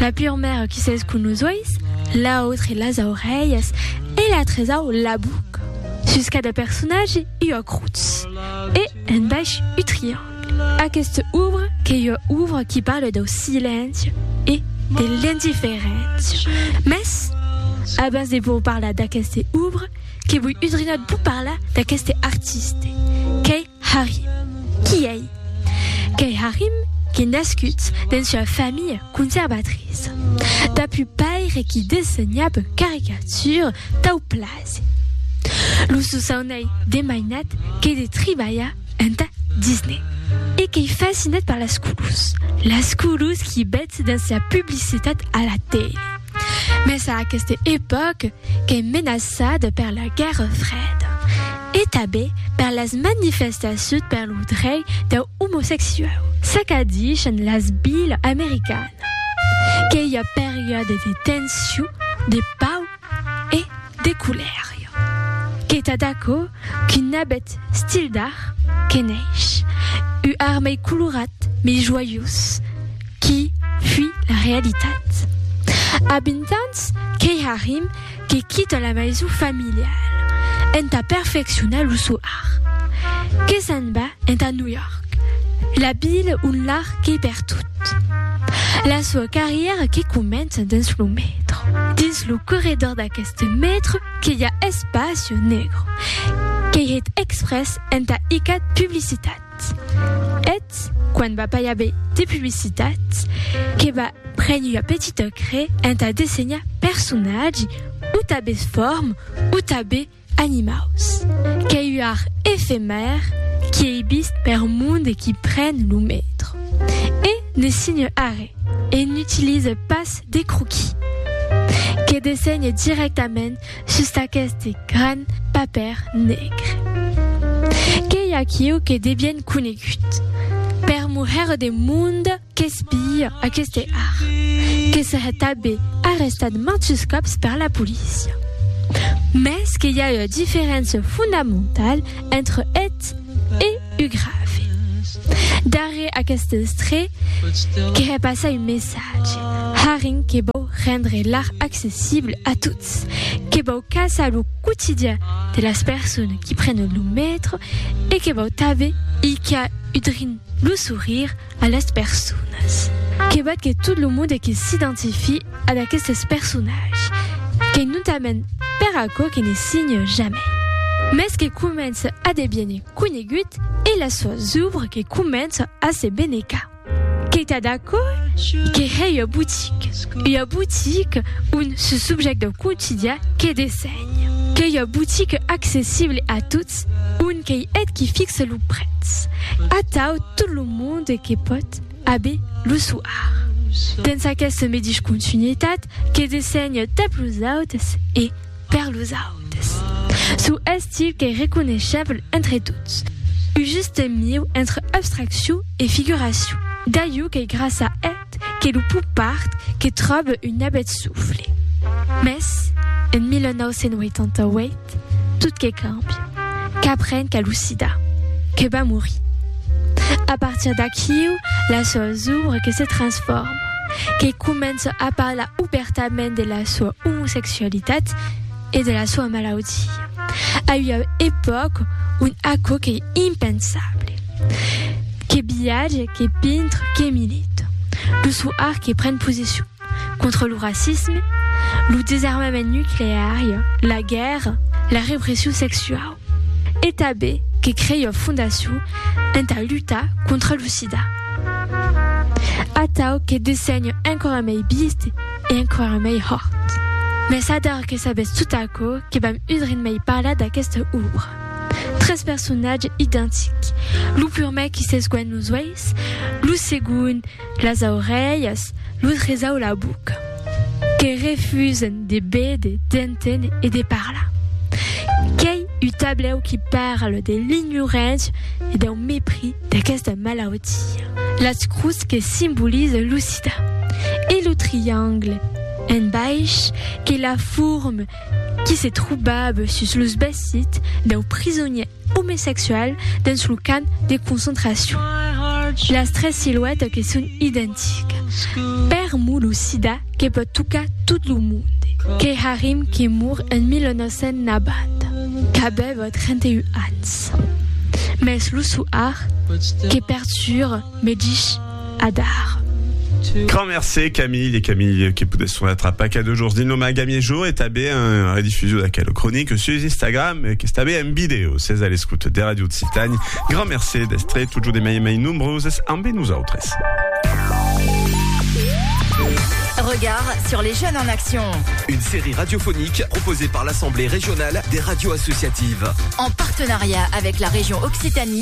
La pure maire qui s'es cun los uèis, l'autre las aurelhas e la tresau la buca. Sus cada personatge ua crutz e en baish u triangle. Aquesta obra qu'ei ua obra qui parle dau silenci e de l'indiferéncia. Mès, abans de vos parlar d'aqueste obra, que voi udrinat vos parlar d'aqueste artiste, qu'ei Harry. Qui ei? Qu'ei Harry qui nascut dens ua familha conservatriça. Dapu paire qui dessenhab caricature tau plase. Lo sosaun ei de mainat que de tribalhar entà Disney. E qu'ei fascinat per las colors. Las colors qui betz dens la publicitat a la tele. Mès a aqueste epòque qu'es menaçat per la guèrra freda e tanben per las manifestacions per lo drei dau omosexuau. S'acadishan las vilas americanas que i a periòdes de tension, de pau e de colèria. Qu'es tad aquò qu'un abet stil d'art que neish, u armei colorat, mei joiós, qui fui la realitat. A 20 ans, qu'ei Harim que quita la maison familiale entà perfeccionar lo sò art, que s'en va entà New York, la ville ont l'art qu'ei pertot. La sua carrièra que comença dins lo metro. Dins lo corredor d'aqueste metro que i a Espacio Negro, qu'ei hèt exprès entà icat publicitat. Eth, eth, quan va pas i aver de publicitat, que va prene ua petita cre entà dessenhar personatgi, o tabes form, o tabe animaus. Qu'ei ua art efemèr qui ei vist per monde e qui pren lo metro. E ne signe arre, e n'utilise pas de croquis. Que dessenhe directament Sus d'aqueste gran papèr negre. Qu'ei aquiu que de bien conegut. Per muhèr de monde qu'espia aqueste art. Que se hè tabé arrestat mantus còps per la polícia. Mès que i a ua diferéncia fondamentale entre eth e u grave. Darrèr aqueste estré que hè passar un messatge. Haring que vòu rendre l'art accessible a tots. Ets que vau caçar lo quotidian de las personas qui prenen lo metro e que vau tanben hilhar udrin lo sourire a las personas. Que vat que tot lo monde que s'identifie ad aquestes personatges, qu'ei notament per aquò que ne signe jamai, mès que comença a deviene conegut e las soas ouvres que comença a se benecar. Qu'ei tad aquò que hè ua botique, ua botique on ce subjèct dau quotidian que dessenhe. Qu'ei ua botique accessible a tots, on qu'ei eth qui fixe lo prètz, atau tot lo monde que pòt a be lo soar. Dens aqueste medish continuitat que dessenhe tap los autes e, Per los autes, çò estil qu'ei reconeishable entre tots, un juste mieu entre abstraccion e figuracion, d'aiu qu'ei grassa eth que lo pop art que tròbe un abet soufle. Mès, en 1988, tot que càmbia, qu'aprenc a lo sida, que va morir. A partir d'aquiu, las sòus obres que se transforman. que comença a parlar obèrtament de la soa omosexualitat e de la soa malaudia, a ua epòca ont aquò qu'ei impensable. Que viatge, que pintre, que milita. Lo sò art que pren posicion contra lo racisme, lo desarmament nucleari, la guèrra, la repression sexuau. E tanben que crèion fondacion entà lutar contra lo sida. Atau que dessenho enquara mei biist e enquara mei hòrt. Mès ador que sabètz tot aquò que vam udrin mei parlar d'aquesta òbra. Tres personatges identics, lo purmèr qui s'esguènt los uèis, lo segond las aurelhas, lo tresau la boca, que refusen de béder, d'enténer e de parlar. Qu'ei un tablèu qui parle de l'ignorància e dau mepris d'aquesta malautia. Las crus que simboliza lo sida e lo triangle en baish que la forme qui se trobava sus los vesits dau prisonièr omesexual dens lo camp de concentracion. Las tres siluètas que son identicas. Per mo lo sida que pòt tocar tot lo monde. Que Harim que mor en 1990 qu'avèva 31 ans. Mès lo soar que perturba me dich. Adar. Grand mercé Camille e Camille que podes sonar a paca de jorns dins lo Magami e jo e tanben en redifusion d'aquela cronica sus Instagram e qu'es tanben en video. S'es a l'escouta de Radio Occitània, grand mercé d'estre totjorn de mai en mai nombroses ambe nosautres. Regard sur les jeunes en action. Une série radiophonique proposée par l'Assemblée régionale des radios associatives. En partenariat avec la région Occitanie.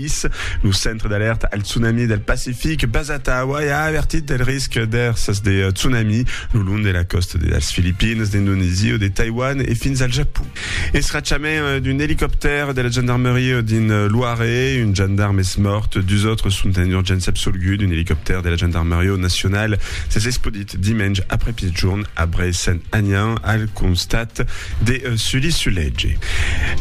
Greenpeace, lo Centre d'Alèrta al Tsunami del Pacific basat a Hawaii, a avertit del risc d'èrsas de tsunami lo long de la còsta de las Filipines, d'Indonesia o de Taiwan e fins al Japon. Escrachament d'un elicoptèr de la gendarmeria dins Loire, un gendarm es mòrt, dus autres sont en urgéncia absolguts d'un elicoptèr de la gendarmeria nacional. S'es espaudit. dimenge aprèpitjorn abrei Sent Anian al constat de Sully Sulege.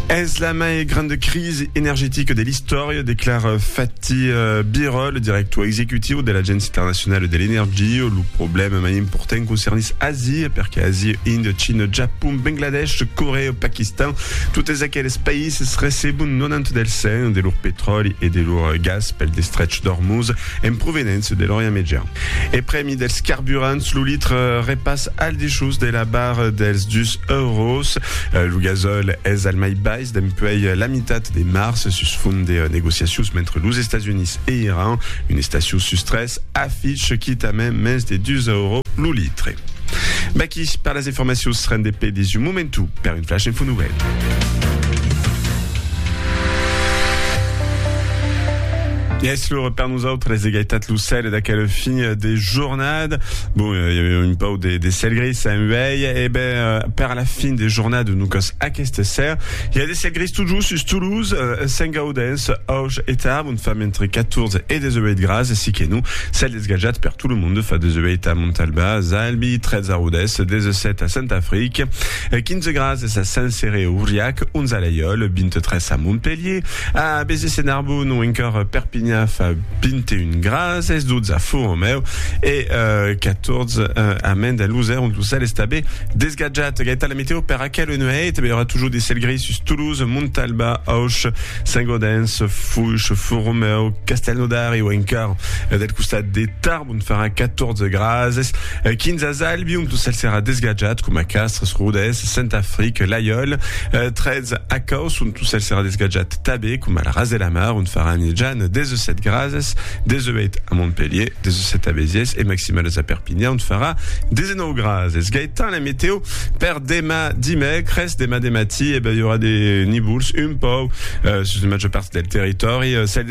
Es la mai granda crisi energetica de l'istòria, declara Fatih Birol, le director executiu de l'Agéncia Internacional de l'Energia. Lo problèma mai important concernís Asia, perque Asia, Índia, China, Japon, Bangladesh, Corèa o Paquistan, totes aqueles païses recebon 90 del 100 de lor petròli e de lor gas pel destrech d'Ormuz en provenença de l'Orient Mejan. E prèmi dels carburants, lo litre repas al dessús de la barra dels dus euros. Lo gasòl es al mai bais dempuèi la mitat de març sus font de negociacions mentre los Estats Units e Iran, un estaciu sus tres, afich quitament mens de dus euros lo litre. Vaqui per las informacions ren de pedis un momentu per un flash info nouvèl. Yes, lo Nosautres de gaitat lo cèle d'aquel fin de jornada. Bon, i eh, avèu un pau de, de cèl gris en uèi, e ben, eh, per la fin de jornada, no cas aquesta ser, i a de cèl gris tot just sus Toulouse, eh, Saint-Gaudens, Auch e Tarbes, on fam entre 14 e 18 gras, e si que no, cèl desgajat per tot lo monde, fa 18 a Montalbà, Zalbi, 13 a Rodès, 17 a Saint-Afric, 15 gras a Saint-Céré-Auriac, 11 a Laiòl, 23 a Montpelhier, A Béziers e Narbonne ont encòr Perpignan fa 21 grads, es 12 a Font-Romèu e 14 a Mende a Losèr ont lo cèl està be desgatjat. Gaita la meteo per aquela nuèit, be aurà toujours de cèl gris sus Toulouse, Montalba, Auch, Saint-Gaudens, Foiche, Font-Romèu, Castelnaudary o encòr del costat de Tarbes. Ont farà 14 grases, 15 a Zalbi, ont lo cèl serà desgatjat, coma Castres, Rodés, Saint-Afric, Laiòl, 13 a Còs, ont lo cèl serà desgatjat tabé, coma al ras de la mar, ont farà nejan, 17 grases, 18 a Montpelhier, 17 a Béziers e maximalas a Perpinhan, ont farà 19 grases. Gaëtan, la meteo per demà dimècres, demà de matí, e ben, i aurà de nivols un pauc sus la màger part del territòri, cèl.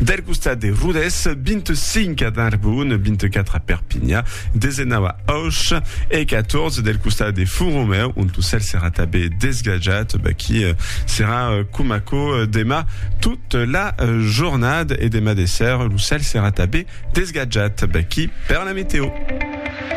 Del costat de Rodés, 25 a Narbonne, 24 a Perpinha, 19 a Auch e 14 del costat de Font-Romeu, ont lo cèl serà tanben desgatjat, baqui serà coma aquò demà tot la jornada e demà de ser lo cèl serà tanben desgatjat, baqui per la meteo.